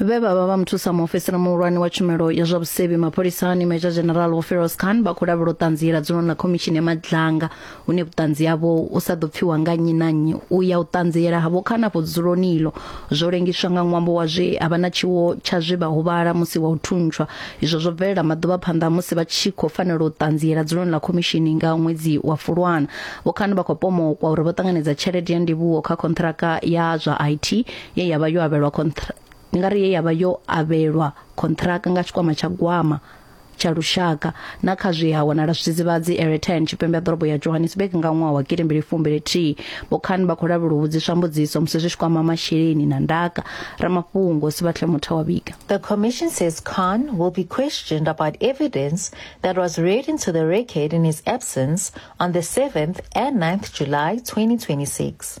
vhe vha vha vha muthusa muofisiri muhulwane wa tshumelo ya zwa vhusevhi mapholisani major general wofiros khan vha khou lavhela u ṱanziela dzulo na khomishini ya madlanga hune vhuṱanzi havho u sa ḓo pfiwa nga nnyi na nnyi u ya u ṱanziela havho khan afho dzuloni ilo zwo lengiswa nga ṅwambo wa zwe a vha na tshiwo tsha zwe vha huvhala musi wa u thuntswa izwo zwo bvelela maḓuvha phanḓa musi vha tshi khou fanela u ṱanziela dzuloni ḽa khomishini nga ṅwedzi wa fulwana vho khan vha khou pomokwa uri vho ṱanganedza tshelede ya ndivhuwo kha khonṱhiraka ya zwa it ye ya vha yo avhelwa kontra ndi nga ri ye ya vha yo avhelwa kontraka nga tshikwama tsha gwama tsha lushaka na kha zwi ha wanala zwidzidzivhadzi Eretan tshipembe ya ḓorobo ya Johannesburg nga ṅwaha wa gidi mbili fumbili thihi vho Khan vha khou lavhelwa u vhudziswa mbudziso musi zwi tshi kwama masheleni na ndaka ramafhungo Sibatle Mutha wa vhiga The commission says Khan will be questioned about evidence that was read into the record in his absence on the 7th and 9th July 2026.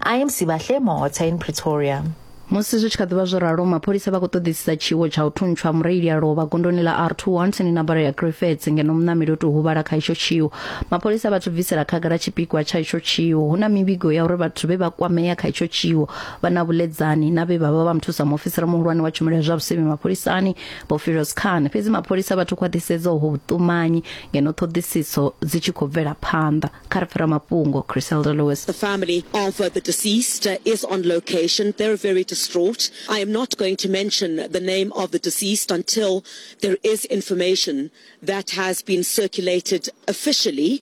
I am Sibahle Mota in Pretoria. musi zwi tshi kha ḓivha zwo ralo mapholisa vha khou ṱoḓisisa tshiwo tsha u thuntsha mureili a lovha gondoni ḽa r21 tsini na baro ya griffets ngeno muṋameli o tou huvhala kha itsho tshiwo mapholisa vha tshi bvisela khagala tshipikwa tsha itsho tshiwo hu na mivhigo ya uri vhathu vhe vha kwamea kha itsho tshiwo vha na vhuledzani na vhe vha vha vha muthusa muofisiri muhulwane wa tshumelo ya zwa vhusevhi mapholisani vho firos khan fhedzi mapholisa vhathu khwaṱhisedza ho vhuṱumanyi ngeno ṱhoḓisiso dzi tshi khou bvela phanḓa Karpra Mapungo, Criselda Lewis. The family of uh, the deceased uh, is on location. They're very distraught. I am not going to mention the name of the deceased until there is information that has been circulated officially.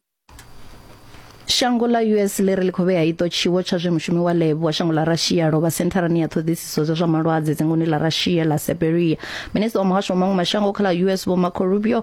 shango ḽa us ḽi ri ḽi khou vhea iṱo tshiwo tsha zwe mushumi wa lebo wa shango ḽa russia lovha sentharani ya ṱhoḓisiso dza zwa malwadze dzingoni ḽa russia ḽa siberia minista wa muhasho wa maṅwe mashango kha ḽa us vho marco rubio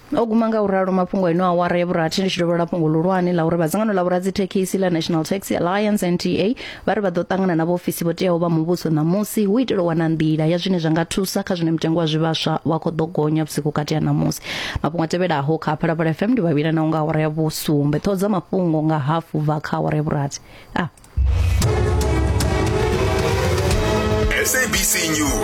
o guma nga u ralo mafhungo eno awara ya vhurathi ndi tshi dovholola fhungo ḽihulwane ḽa uri vha dzangano ḽa vhoradzithekhisi ḽa national taxi alliance nta vha ri vha ḓo ṱangana na vhaofisi vho teaho vha muvhuso ṋamusi hu itela u wana nḓila ya zwine zwa nga thusa kha zwine mutengo wa zwivhaswa wa khou ḓo gonya vhusiku vhukati ha ṋamusi mafhungo a tevhelaho kha phalaphala fm ndi vhavhila naho nga awara ya vhusumbe ṱhoho dza mafhungo nga hafu bva kha awara ya vhurathi a SABC News.